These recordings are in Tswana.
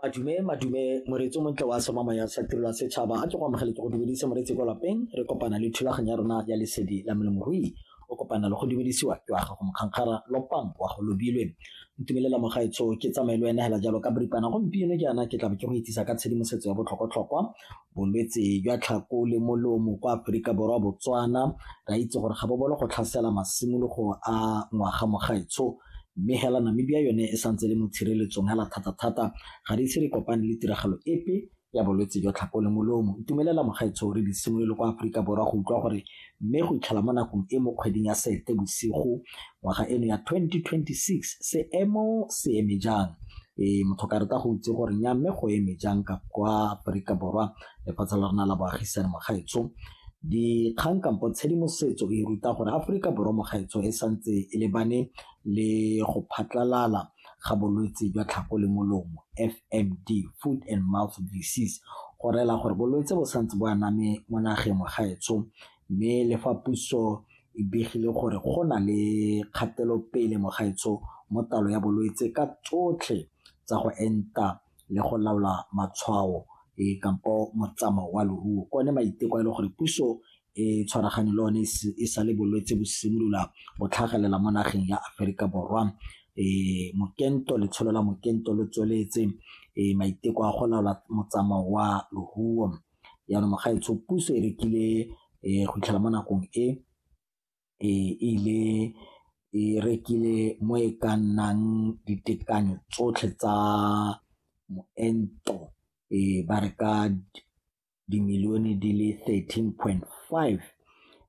Madume, madume, moreetsi o montle wa Somamo ya Setirelo ya Setšhaba a ke go amogele ke go dumedise moreetsi kwa lapeng re kopana le thulaganyo ya rona ya lesedi la molemirui o kopana le go dumedisiwa ke wa gago mokgankgara lopang wa go lobilwe ntumelela mogaetsho ke tsamaye le wena hela jalo ka boripana gompieno jaana ke tlabe ke go itsisa ka tshedimosetso ya botlhokwatlhokwa bolwetse jwa tlhako le molomo kwa Aforika Borwa Botswana ra itse gore ga bo bolo go tlhasela masimologo a ngwaga mogaetsho mme hela Namibia yone e santse le mo tshireletsong hela thata-thata ga di ise re kopane le tiragalo epe ya bolwetse jwa tlhako le molomo itumelela mogaetsho re di simolole kwa Aforika Borwa go utlwa gore mme go itlhela mo nakong e mo kgweding ya Seetebosigo ngwaga eno ya 2026 seemo se eme jang e motho ka rata go itse gore nya mme go eme jang ka kwa Aforika Borwa lefatshe la rona la boagisane mogaetso dikgang kampo tshedimosetso e ruta gore Aforika Borwa mogaetso e santse e lebane le go phatlalala ga bolwetse jwa tlhago le molomo FMD, Food and Mouth Disease, go rela gore bolwetse bo santse bo aname mo nageng mo gaetsho mme le fa puso e begile gore go na le kgatelopele mo gaetsho mo talo ya bolwetse ka tsotlhe tsa go enta le go laola matshwao e kampo motsamao wa leruo kone maiteko a e le gore puso e tshwaragane le one e sale bolwetse bo simolola bo tlhagelela mo nageng ya Aforika Borwa e mokento letsholo la mokento lo tsweletse e maiteko a go laola motsamao wa lohuo yaanong mogaetsho puso e rekile e go itlhela mo nakong e e ile e rekile mo e ka nnang ditekanyo tsotlhe tsa moento e ba reka dimilione di le 13.5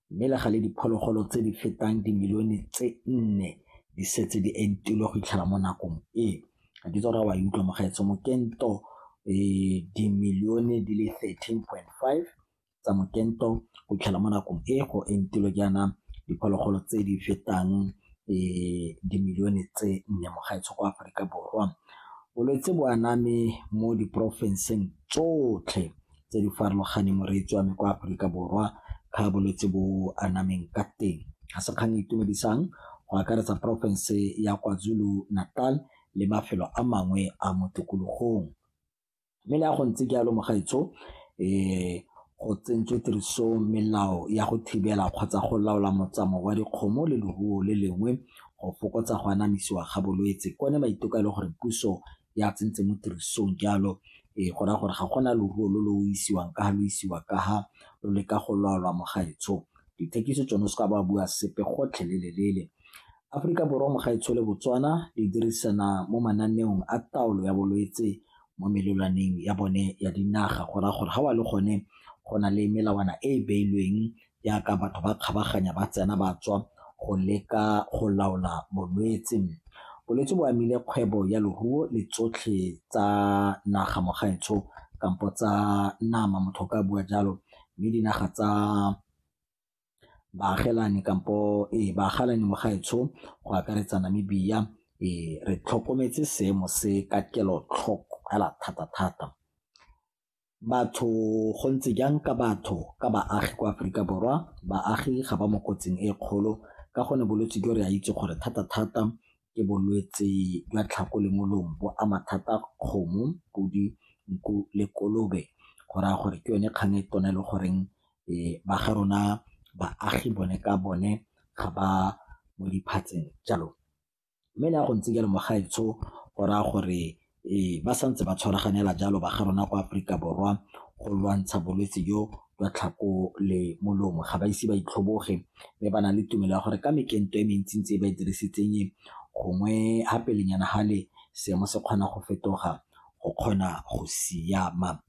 mme le gale diphologolo tse di fetang dimilione tse nne di setse di entilwe go itlhela mo nakong e ga ke tsora wa e utlwa mogaetso mokento um dimilione di le 13.5 tsa mokento go itlhela mo nakong e go entilwe jaana diphologolo tse di fetang dimilione tse nne mo gaetsho kwa Aforika Borwa. Bolwetse bo aname mo diporofenseng tsotlhe tse di farologaneng moreetsi wa me kwa Aforika Borwa ka bolwetse bo anameng ka teng. Ga se kgang e itumedisang go akaretsa porofense ya KwaZulu-Natal le mafelo a mangwe a mo tikologong. Mme le fa go ntse jalo mogaetsho go tsentswe tiriso melao ya go thibela kgotsa go laola motsamao wa dikgomo le leruo le lengwe go fokotsa go anamisiwa ga bolwetse. Ke one maiteko a e le gore puso ya tsentse mo tirisong jalo go raya gore ga gona leruo lo lo isiwang ka fa lo isiwa ka fa lo leka go laolwa mogaetsho. Dithekiso tsone o seka ba bua sepe gotlhelele. Aforika Borwa mo gaetshole Botswana di dirisana mo mananeong a taolo ya bolwetse mo melelwaneng ya bone ya dinaga go raya gore ga wa le gone go na le melawana e e beilweng jaaka batho ba kgabaganya ba tsena ba tswa go leka go laola bolwetse. Bolwetse bo amile kgwebo ya leruo le tsotlhe tsa naga mo gaetsho kampo tsa nama motho o ka bua jalo mme dinaga tsa baagelani kampo ee baagalani mo gaetsho go akaretsa Namibia ee re tlhokometse seemo se ka kelotlhoko hela thata-thata. Batho go ntse jang ka batho ka baagi kwa Aforika Borwa, baagi ga ba mo kotsing e kgolo ka gonne bolwetse jo re a itse gore thata-thata ke bolwetse jwa tlhako le molomo bo ama thata kgomo, podi, nku le kolobe go raya gore ke yone kgang e tona e le goreng ba ga rona baagi bone ka bone ga ba mo diphatseng jalo. Mme le ha go ntse jalo mo gaetsho go raya gore ba santse ba tshwaraganela jalo ba ga rona kwa Aforika Borwa go lwantsha bolwetse jo jwa tlhako le molomo, ga ba ise ba itlhoboge mme ba na le tumelo ya gore ka mekento e mentsi-ntsi e ba e dirisitseng e gongwe ha pelenyana hale seemo se kgona go fetoga go kgona go siama.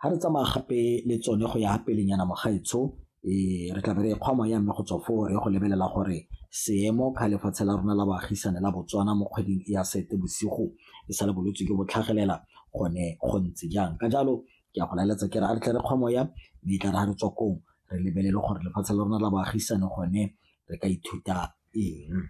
ga re tsamaya gape le tsone go ya pelenyana mogaetsho um re tla be re kgwa moya mme go tswa foo re go lebelela gore seemo ka lefatshe la rona la baagisane la botswana mo kgweding e ya sete bosigo e sa le bolwetse jo bo tlhagelela gone go ntse jang ka jalo ke a go laeletsa ke re a re tle re kgwa moya mme e tla re ga re tswa kong re lebelele gore lefatshe la rona la baagisane gone re ka ithuta eng